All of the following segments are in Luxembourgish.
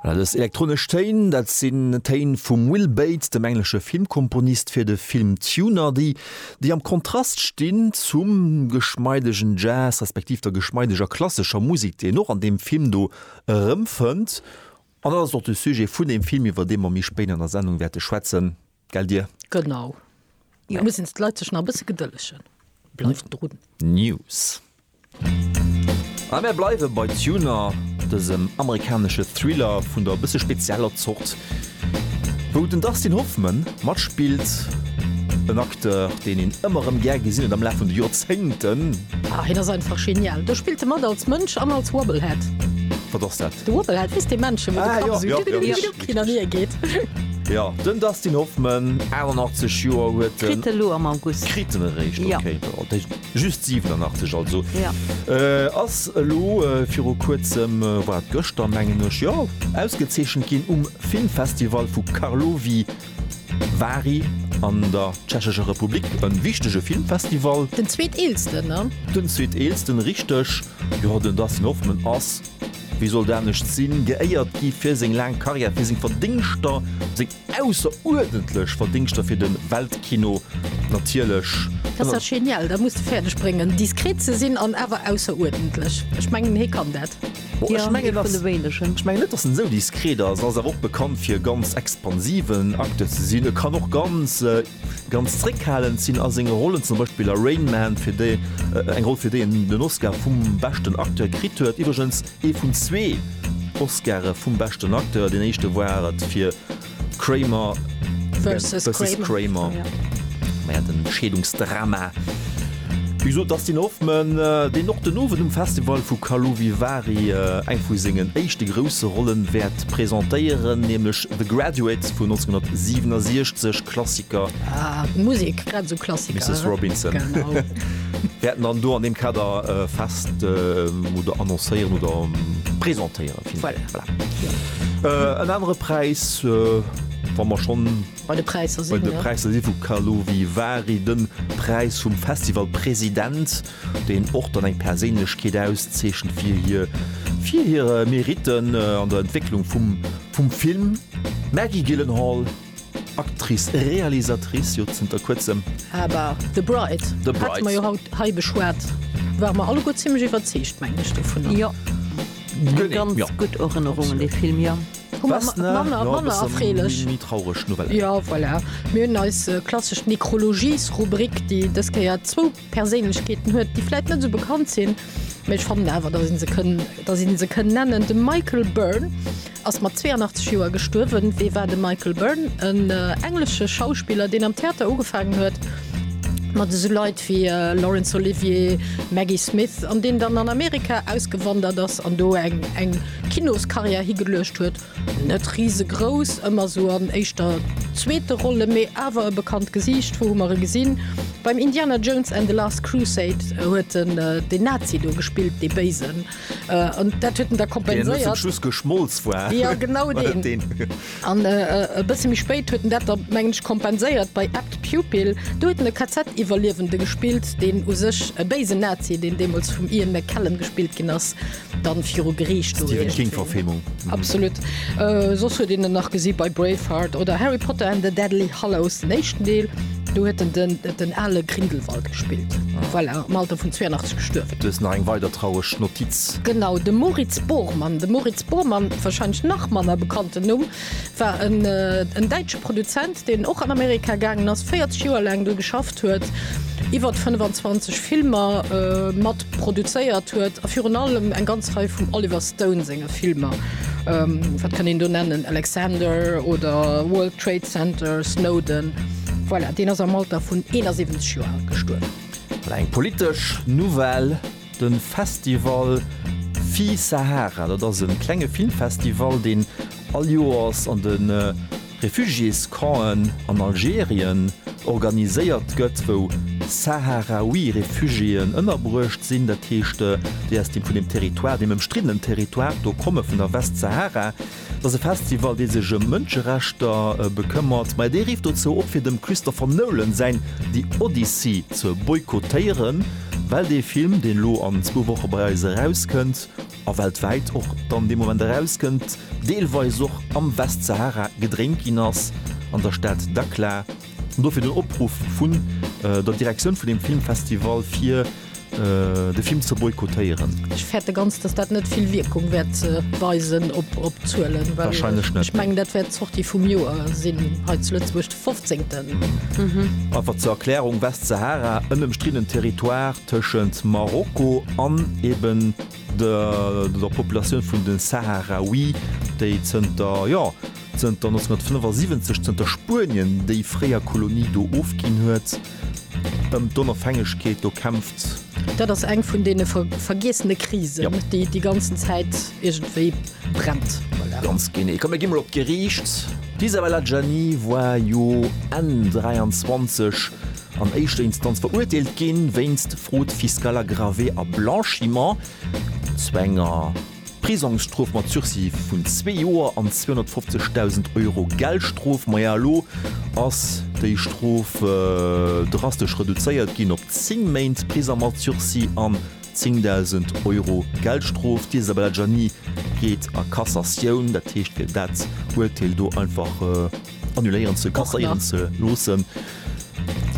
Voilà, dës elektronesch Téin, dat sinn Téin vum Will Bates, dem englesche Filmkomponist fir de Film Tuner, déi déi am Kontrast stinn zum geschmeidegen Jazz respektiv der geschmeideger klassescher Musek, déi een och an deem Film do erëmfënnt. An dat ass och de Sujet vun deem Film, iwwer dee mer méi spéit an der Sendung wäerte schwätzen. Gell dir? Genau. Mir mussen jetzt d'Leit sech nach e bësse gedëllegen. Bleift drun. News. A mir bleiwe bei Tuner, dësem amerikanesche Thriller vun der e bësse spezieller Zort, wou den Dustin Hoffman matspillt, en Acteur, deen een ëmmer erëm gär gesinn huet am Laf vun de Joerzéngten. Ah, hien ass einfach genial. Do spillt e mat als Mënsch an als Wobblehead. Wat ass dat? De Wobblehead, wéist dee Männchen, wou de Kapp esou. Hin an hier geet. Jo, den Dustin Hoffman, 88 Joer huet en. Kritt e lo am August. Kritt en eréischt, okay. Jo. Dat heescht just 87 also. Jo. Ass elo viru kuerzem, war et gëschter mengen ech, jo, ausgezeechent ginn um Filmfestival vu Karlovy Vary an der Tschechescher Republik. E wichtege Filmfestival. Den zweeteelsten, ne? Den zweeteelsten, richteg. Jo, den Dustin Hoffman ass. Wéi sollt anescht sinn, geéiert gi fir seng laang Karriär, fir seng Verdéngschter, seng ausseruerdentlech Verdéngschter fir de Weltkino natierlech. Dat ass genial, dat muss de fäerdeg bréngen, diskret ze sinn an awer ausseruerdentlech. Ech mengen, hie kann dat. Bon, ech mengen, ech mengen net, dass en esou diskret ass. En ass awer och bekannt, fir ganz expansiven Acteur ze sinn. E kann och ganz. Ganz zréckhalend sinn a senge Rollen, zum Beispill a Rain Man, fir déi eng Roll fir déi en den Oscar vum beschten Acteur kritt huet, iwwregens ee vun zwee Oscare vum beschten Acteur, deen éischte war et fir Kramer versus Kramer, majo den Scheedungsdrama. Wéi gesot, Dustin Hoffman, deen och den Owend um Festival vu Karlovy Vary eng vu sengen éischte grousse Rollen wäert presentéieren, nämlech The Graduates vun 1967, Klassiker. Ah, Musik, grad esou Klassiker. Misses Robinson. Genau. Wir hätten dann do an dem Kader äh, fest äh, oder annoncéieren oder ähm, presentéieren. Voilà. Voilà. Ja. Äh, en andere Preis, äh, wann wir schon bei de Preiser sinn, bei de Preiser ja. si vu Kalovi Wari den Preis vum Festivalpräsident, den och dann eng Perséinlechkeet auszeechen fir hier fir hire Meriten äh, an der Entwicklung vum Vum Film Maggie Gyllenhaal, Actrice, Realisatrice jo zënter kuerzem. Awer The Bride, The Bride. hate mer jo haut hei beschwat, ware mer alleguer zimmlech iwwerzeegt, mengen ech, dovunner. Jo, eng Genee, ganz jo. gutt Erënnerung un dee Film, jo. Hu mer Wessner, manner, jo, e manner bësse erfreelech. méi traureg Nouvellen. Jo, voilà. Mir hunn eis klassesch Nécrologies-Rubrik, déi dës Kéier zwou. Perséinlechkeeten huet, déi vläit net esou bekannt sinn, mee ech fannen awer, datt ee se kënn, datt een se kënn nennen. De Michael Byrne ass mat 82 Joer gestuerwen. Wee war de Michael Byrne? En englesche Schauspiller, deen am Theater ugefaangen huet mat esou Leit wéi Laurence Olivier, Maggie Smith, an deen dann an Amerika ausgewandert ass an do eng eng Kinoskarriär higeluecht huet. Net risegrouss, ëmmer sou an éischter zweete Rolle, mee awer e bekannt Gesiicht. Wou hu mer e gesinn? Beim Indiana Jones and the Last Crusade huet en den Nazi do gespillt, dee Béisen. An dat huet en da kompenséiert. Deen zum Schluss geschmolz war. Jo, genau deen. An e bësse méi spéit huet en dat da, mengen ech, kompenséiert bei Apt Pupil. Do huet en e KZ-Iwwerliewende gespillt, deen u sech e béisen Nazi, deen deemools vum Ian McKellen gespillt ginn ass, Dann viru Griicht do Stephen King Verfilmung. Absolut. Äh, soss huet een en nach gesi bei Braveheart oder Harry Potter and the Deadly Hallows den éischten Deel. Do huet en den, den ale Grindelwald gespillt, well er am Alter vun 82 gestuerwen. Du hues nach eng weider traureg Notiz. Genau, de Moritz Bormann. De Moritz Bormann, wahrscheinlech nach manner bekannten Numm, war en däitsche Produzent, deen och an Amerika gaangen ass, 40 Joer laang do geschafft huet, iwwer 25 Filmer mat produzéiert huet a virun allem eng ganz Rei vum Oliver Stone senge Filmer. Wat kann een do nennen? Alexander oder World Trade Center, Snowden. Voilà, deen ass am Alter vun 71 Joer al gestuerwen. Eng politesch Nouvelle. De Festival Fille Sahara, dat ass e klenge Filmfestival, deen all Joers an de Refugiés-Campen an Algerien organiséiert gëtt, wou Saharaui Refugiéen ënnerbruecht sinn. Dat heescht, déi aus deem vun deem Territoire, deem ëmstriddenen Territoire do komme vun der Westsahara. Et ass e Festival, dee sech ëm Mënscherechter bekëmmert, mä dee rifft dozou op, fir dem Christopher Nolan säin The Odyssey ze boykottéieren, well dee Film, deen elo an zwou Woche bei eis erauskënnt, a weltwäit och dann dee Moment erauskënnt, deelweis och am Westsahara gedréint ginn ass, an der Stad Dakhla. Dofir den Opruff vun der Direktioun vun deem Filmfestival fir de Film ze boykottéieren. Ech fäerte ganz, datt dat net vill Wierkung wäert weisen op d'Zuelen, well ech mengen, dat wäert d'Sortie vum Joer sinn hei zu Lëtzebuerg, de fofzéngten. Einfach zur Erklärung, Westsahara, en ëmstriddenen Territoire tëschent Marokko an eben der Populatioun vun de Sahraouie, déi zënter, jo, Zënter 1975, zënter Spuenien déi fréier Kolonie do ofginn huet, ëm d'Onofhängegkeet do kämpft. Dat ass eng vun deene vergiessene Krisen, déi déi ganzen Zäit iergendwéi brennt. Ganz genee. Komm, mir gi mol op d'Geriicht. D'Isabel Adjani war jo Enn 23 an éischter Instanz verurteelt ginn, wéinst Fraude fiscale aggravée a Blanchiment zu enger. Prisongsstrof mat Sursis vun zwee Joer an 250.000 Euro Geldstrof. Maja elo ass déi Strof drastesch reduzéiert ginn op 10 Méint Prisong mat Sursis an 10.000 Euro Geldstrof. D'Isabella Gianni geet a Kassatioun, dat heescht fir dat Urteel do einfach. Annuléieren ze kasséieren ze loossen.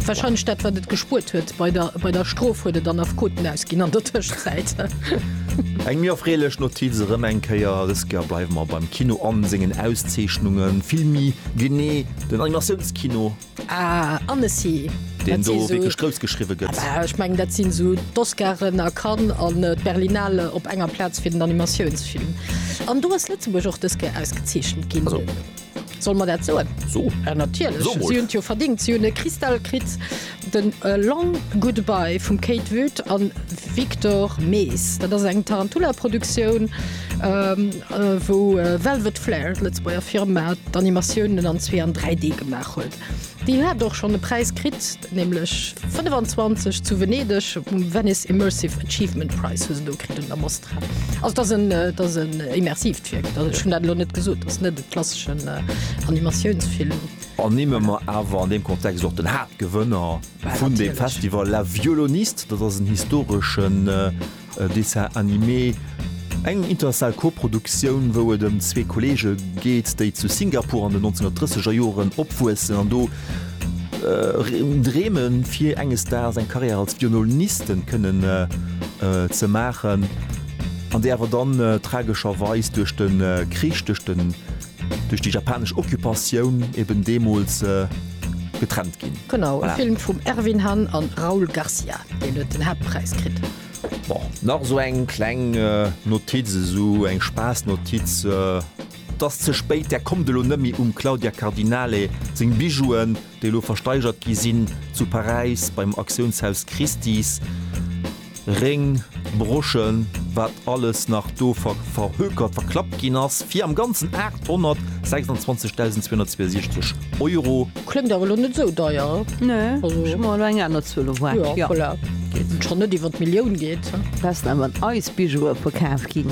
Wahrscheinlech dat wat et gespuert huet bei der bei der Strof huet et an Affkoten ausginn an der Tëschzäit. Eng méi erfreelech Notiz erëm eng Kéier, Dës Kéier bleiwe mer beim Kino an sengen Auszeechnungen, vill méi genee den Animatiounskino. Ah Annecy. Deen do wierklech grouss geschriwwe gëtt. Ah ech mengen dat sinn esou d'Oscaren a Cannes an d'Berlinale op enger Plaz fir den Animatiounsfilm. An do ass Lëtzebuerg och dës Kéier ausgezeechent ginn. Solle mer dat soen? So. Ja natierlech, So mol. si hunn et jo verdingt. Si hunn e Kristall kritt, den A Long Goodbye vum Kate Wood an Victor Mees. Dat ass eng Tarantula-Produktioun, ähm, äh, wou Velvet Flair, d'Lëtzebuerger Firma, d'Animatiounen an zwee an 3D gemaach huet. Déi hat och schonn e Präis kritt, nämlech 25 zu Venedeg, um Venice Immersive Achievement Prize hu se do kritt un der Mostra. Also dat ass en, äh, dat ass en äh, immersivt Wierk. Dat, ech hunn dat elo net gesot, dat ass net e klasseschen äh, Animatiounsfilm. An nimme mer awer an deem Kontext och den Haaptgewënner vun deem Festival, La Violoniste. Dat ass en historeschen äh, E Dessin animé, eng international Koproduktioun, wou et ëm zwee Kolleege geet, déi zu Singapur an den 1930er Joren opwuessen an do dreemen, fir enges Daags eng Karriär als Vionolnisten kënnen ze maachen, an déi awer dann tragescherweis duerch de Krich, duerch de Duerch déi japanesch Occupatioun eben deemools getrennt ginn. Genau, e Film vum Ervin Han an Raul Garcia, deen huet den Haaptpräis kritt. Bon, nach esou eng kleng Notiz, esou eng Spaassnotiz, et ass ze spéit, där kommt elo net méi um Claudia Cardinale seng Bijouen. déi elo versteigert gi sinn, zu Paräis beim Aktiounshaus Christie's, Réng, Broschen, wat alles nach do verhökert, verklappt ginn ass, fir am Ganzen 826.262 Euro. Kléngt awer elo net esou deier. Nee, ech hu mer elo eng aner Zuel erwaart. Jo, voilà. Datt et schonn net iwwer d'Millioun geet. Wat ass dann mat eis Bijoue verkaf ginn?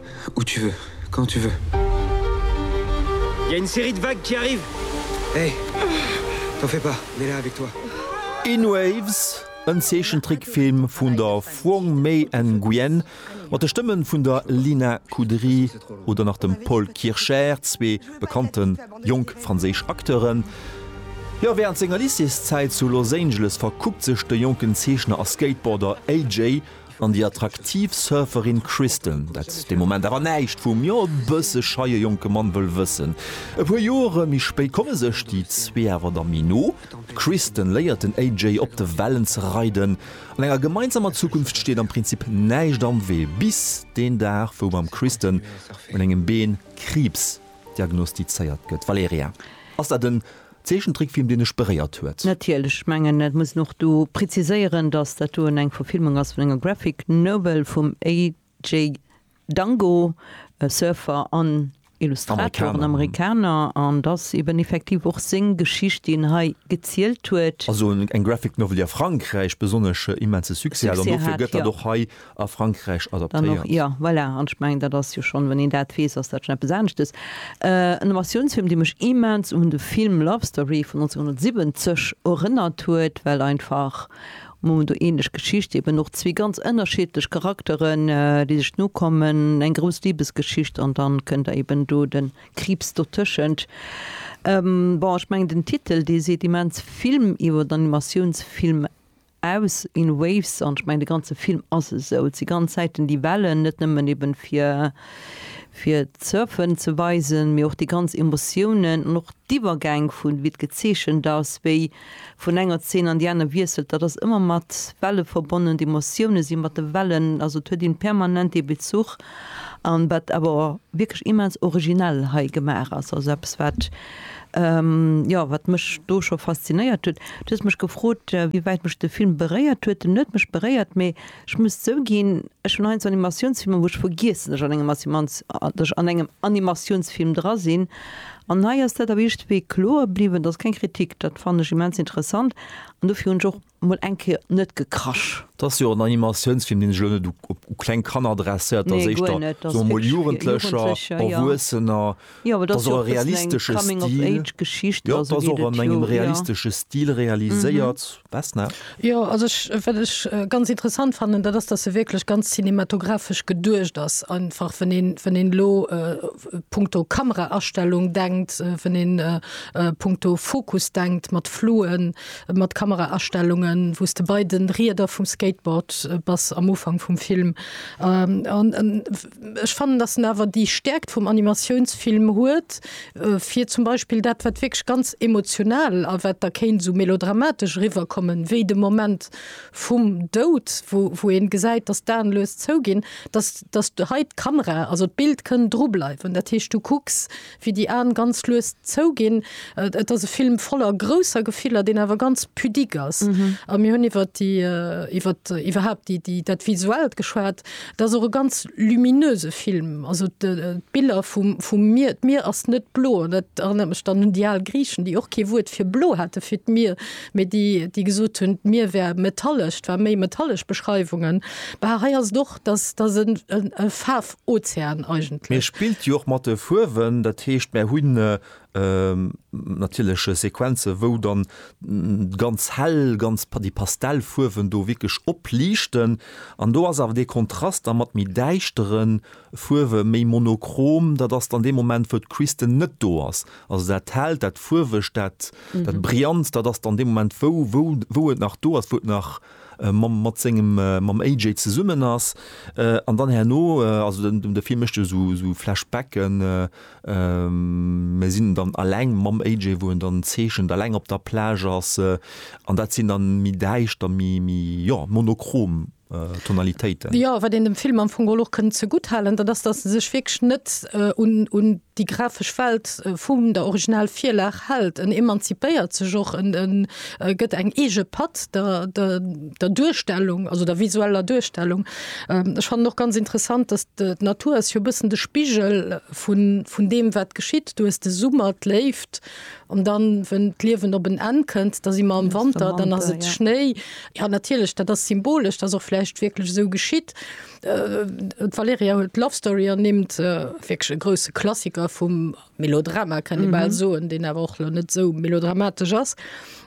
Où tu veux, quand tu veux. Y a une série de vagues qui arrive. Hey, t'en fais pas, on est là avec toi. In Waves, en Zeechentrickfilm vun der Phuong Mei Nguyen mat de Stëmmen vun der Lina Kudry oder nach dem Paul Kircher, zwee bekannten jonk franséisch Acteuren. Jo, wärend senger Lycéeszäit zu Los Angeles verkuppt sech de jonken Zeechner a Skateboarder AJ. An déi attraktiv Surferin Kristen, dat de Moment awer näischt vum, jo e bësse scheie jonke Mann wëll wëssen. E puer Joere méi spéit komme sech déi zwee awer da méi no. D'Kristen léiert den AJ op de Wellen ze reiden. An enger gemeinsamer Zukunft steet am Prinzip näischt am Wee, bis deen Dag wou beim Kristen un engem Been Kriibs diagnostizéiert gëtt. Valerija, ass dat en Zeechentrickfilm deen ech beréiert huet. Natierlech, ech mengen et muss een och do preziséieren, datt dat doen eng Verfilmung ass vun enger Graphic Novel vum AJ Dango, Surfer an Illustrator, en Amerikaner, an et ass eben effektiv och seng Geschicht déi en hei gezielt huet. Also eng Graphic Novel déi a Frankräich besonnesch immense Succès hat, an dofir gëtt dat och hei a Frankräich adaptéiert. Jo, voilà, an ech mengen, dat ass jo schonn, wann een dat weess, ass dat schonn eppes aneschtes. En Animatiounsfilm, dee mech immens un de Film Love Story vun 1970 erënnert huet, well einfach um Moment do ähnlech Geschicht, eben och zwee ganz ënnerschiedlech Charakteren, déi sech nokommen, eng grouss Libesgeschicht an dann kënnt da eben do de Kriibs dotëschent. Bon, ech mengen, den Titel, dee seet immens vill iwwer Animatiounsfilm aus in waves an ech mengen de ganze Film ass esou, et si ganz Zäiten déi Wellen, net nëmmen eben fir fir d'Surfen ze weisen, mee och déi ganz Emotiounen an och d'Iwwergäng vun wéi et gezeechent ass, wéi vun enger Zeen an déi aner wiesselt, dat ass ëmmer mat Welle verbonnen, d'Emotioune si mat de Wellen, also et huet een permanent dee Bezuch. An wat awer wierklech immens originell hei gemaach ass, also eppes wat, jo, wat mech do scho faszinéiert huet. Du hues mech gefrot, wéi wäit mech de Film beréiert huet. En huet mech beréiert, mee ech muss zouginn, ech hunn heiansdo Animatiounsfilmer, wou ech vergiessen, datt ech an engem Animatiounsfilm dra sinn. An hei ass dat awer iergendwéi kloer bliwwen. Dat ass keng Kritik, dat fannen ech immens interessant an dofir hunn ech och mol eng Kéier net gekrasch. Et ass jo och en Animatiounsfilm, deen sech elo net u kleng Kanner adresséiert, dat ass éischter, soe mer mol, Jugendlecher, Erwuessener. Et ass och e realistesche Stil. Jo, et ass och an engem realistesche Stil realiséiert. Vesna? Jo, also ech, wat ech ganz interessant fannen, dat ass, datt e wierklech ganz cinematographesch geduecht ass. Einfach wann een, wann een elo punkto Kameraastellung denkt, wann een punkto Fokus denkt, mat Fluen, mat Kameraaststellungen, wou s de bei de Rieder vum Skateboard bass am Ufank vum Film. An ech fannen, datt en awer déi Stäerkt vum Animatiounsfilm huet, fir zum Beispill dat, wat wierklech ganz emotional a wat da kéint esou melodramatesch eriwwerkommen, wéi de Moment vum Doud, wou ee gesäit, datt d'Aen lues zouginn, datt hei d'Kamera, also d'Bild kënn drubleiwen. Dat heescht, du kucks wéi déi Aen ganz lues zouginn. Et ass e Film voller grousser Gefiller, deen awer ganz pudique ass. A mir hunn iwwer déi, iwwer, iwwerhaupt déi, déi, dat Visuellt geschwat. Et ass och e ganz luminöse Film. Also d'Biller vum, vum Mier, d'Mier ass net blo. An dat erënnert mech dann un déi al Griichen, déi och kee Wuert fir blo hate fir d'Mier, mee déi, déi gesot hunn, d'Mier wär metallesch. Et war méi metallesch Beschreiwungen. Bah, hei ass et och. dass dass en e Faarfozean eigentlech. Mee e spillt jo och mat de Fuerwen, dat heescht mär hunn natierlech Sequenze wou dann ganz hell, ganz déi Pastellfuerwen do wierklech opliichten an do ass awer dee Kontrast da mat méi däischtere Fuerwe méi monochrom, dat ass dann dee Moment wou d'Kristen net do ass. Also dat hellt, dat fuerwegt, dat brillant, dat ass dann dee Moment wou wou wou et nach do ass, wou et nach. mat sengem mam AJ zesummen ass an dann herno also den de Film mécht jo sou sou Flashbacken mer sinn dann alleng mam AJ wou en dann zeechent alleng op der Plage ass an dat sinn dann méi däischter méi méi jo monochrom Tonalitéiten. Jo wat een dem Film am Fong geholl och kënnt ze gutt halen dat ass dass e sech wierklech net un un Déi grafesch Welt vum der original Virlag hält, en emanzipéiert sech och, en gëtt eng eege Patt der Duerstellung, also der visueller Duerstellung. Ech fannen och ganz interessant, dass d'Natur ass jo e bëssen de Spigel vun deem wat geschitt. Du hues de Summer, d'Léift, an dann wën d'Liewen op en Enn kënnt, da si mer am Wanter, dann ass et Schnéi. Jo natierlech, dat ass symbolesch, dass och vläicht wierklech esou geschitt. D'Valerija huet Love Story ernimmt, wierklech e grousse Klassiker vum Melodrama, kann ee bal mhm. soen, deen awer och lo net sou melodramatesch ass.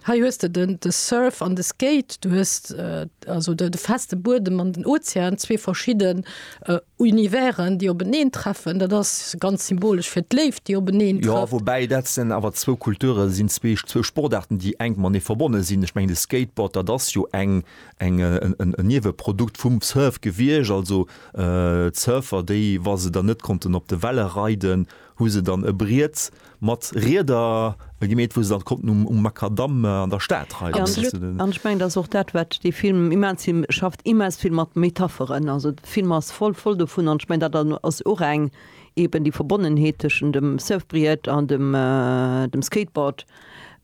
Hei hues de den de Surf an de Skate, du hues äh, also de, de feste Buedem an den Ozean, zwee verschidden äh, Universen, déi openeen treffen. Dat ass ganz symbolesch fir d'Léift, déi openeen trefft. Ja, wobäi dat sinn awer zwou Kulture sinn zwee zwou Sportarten, déi eng man ee verbonne sinn. Ech meng de Skateboard, dat ass jo eng eng en Nieweprodukt vum Surf gewiescht, also d'Surfer déi wa se dann net konnten op de Welle reiden, hu se dann e Briet mat Rieder gemeet wou se dann konnten um um Makadamm an der Stad reiden. An ech mengen dat ass och dat wat dee Film immens hie schafft immens vill mat Metapheren, also de Film ass voll voll dovun an ech mengen dat ass och eng eben déi Verbonnenheet tëschent dem Surfbriet an dem dem Skateboard,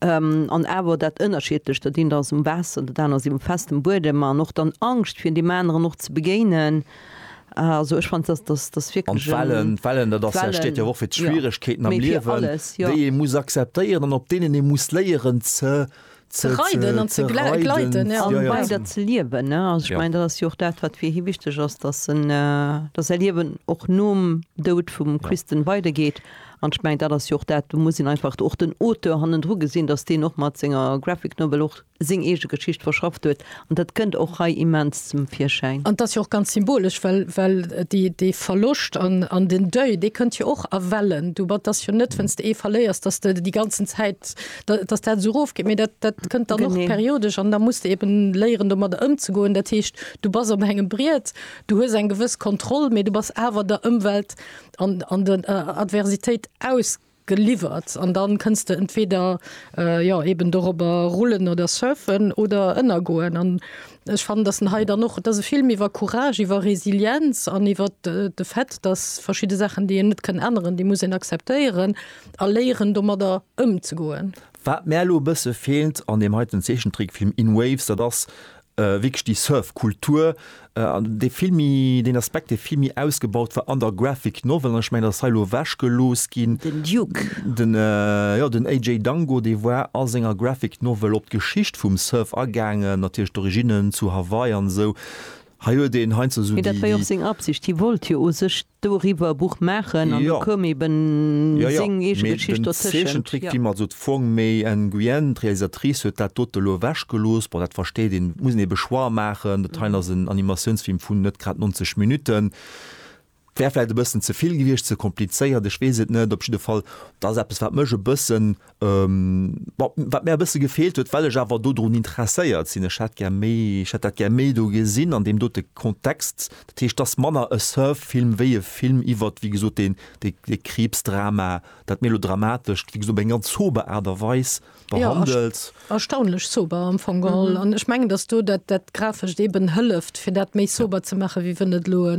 an awer dat Ënnerschiedlecht, dat eent ass um Waasser, dat aner ass eben op festem Buedem, an och dann Angscht fir deem aneren och ze begéinen. Also ech fannt dass dass dass An wierklech en d'Wellen, d'Wellen, dat ass ja, steet jo och fir Wellen, ja, d'Schwieregkeeten am mee fir Liewen, alles, ja. déi ee muss akzeptéieren an op deenen ee muss léieren ze, ze, Ze reiden an ze gle, gleiten, ja. an ja, ja, bei ze. der ze liewen, ne? Also ech Ja. mengen dat ass jo och dat wat fir hie wichteg ass, dass en, dass säi Liewen och nom Doud vum Ja. Kristen weidergeet An ech mengen, dat ass jo och dat, do muss een einfach och den Auteur hannendru gesinn, datt deen och mat senger Graphic Novel och seng eege Geschicht verschafft huet. An dat kënnt och hei immens zum Virschäin. An et ass jo och ganz symbolesch, well, well dee Verloscht an den Deuil, dee kënnt jo och a Wellen. Du, et ass jo net, wenn's de ee verléiers, datt de déi ganzen Zäit, datt dat esou erofgeet, mee dat, dat kënnt dann och periodesch. An da muss de eben léieren, domadder ëmzegoen. Dat heescht, du bass op engem Briet, du hues eng gewëss Kontroll, mee du bass awer der Ëmwelt An, an der Adversitéit ausgeliwwert, an dann kënns de entweder, jo, eben dorobber rullen oder surfen oder ënnergoen. An ech fannen, dass en hei dann och, et ass e Film iwwer Courage, iwwer Resilienz an iwwer de Fait, dass verschidde Saachen, déi een net kënn änneren, déi muss een akzeptéieren a léieren, domadder ëmzegoen. Wat mär elo e bësse feelt an deem heiten Zeechentrickfilm In Waves, dat ass wierklech déi Surf-Kultur, dee vill méi, deen Aspekt, dee vill méi ausgebaut war an der Graphic Novel, an ech mengen, dat ass hei elo ewechgelooss ginn. Den Duke. Den, jo, den AJ Dango, dee war a senger Graphic Novel op d'Geschicht vum Surf agaangen, natierlech d'Originnen zu Hawaii an esou. Hei huet een heiansdo esou déi. Mee dat war jo och seng Absicht, hie wollt jo u sech Doriwwer e Buch maachen an do koum eben seng eege Geschicht dotëschent. Jo, jo, mee den Zeechentrick Film, also d'Fong Mei Nguyen, d'Realisatrice, huet dat dote elo ewech gelooss. Bon, dat versteet een, et muss een ee Choix maachen. Dat heien ass en Animatiounsfilm vun net grad 90 Minutten. Wär vläicht e bëssen ze vill gewiescht, ze komplizéiert, ech weess et net. Op jidde Fall, dat ass eppes wat mech e bëssen Wat mär e bësse gefeelt huet, well ech awer dodrun interesséiert sinn, ech hätt gär méi, ech hätt dat gär méi do gesinn an deem dote Kontext, dat heescht, dass manner e Surf-Film wéi e Film iwwert, wéi gesot, deen, dee Kriibsdrama, dat Melodramatescht, wéi gesot, op eng ganz sober Aart a Weis behandelt. Erstaunlech sober am Fong geholl. An ech mengen, dass do dat, dat Grafescht eeben hëlleft, fir dat méi sober ze maachen, wéi wann et elo e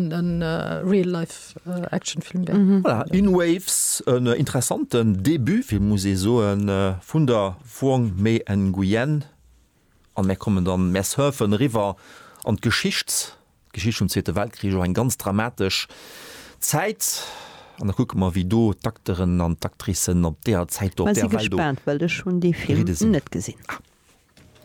Real-Life-Actionfilm wär. Voilà, In Waves, en interessanten Debut, wéi muss ee soen, vun der Wong Mei-en Nguyen. An mär kommen dann, mär surfen eriwwer an d'Geschicht D'Geschicht vum Zweete Weltkrich ass och eng ganz dramatesch Zäit. An da kucke mer, wéi do d'Acteuren an d'Actricen op deeër Zäit do op deeër Welt do geridde sinn.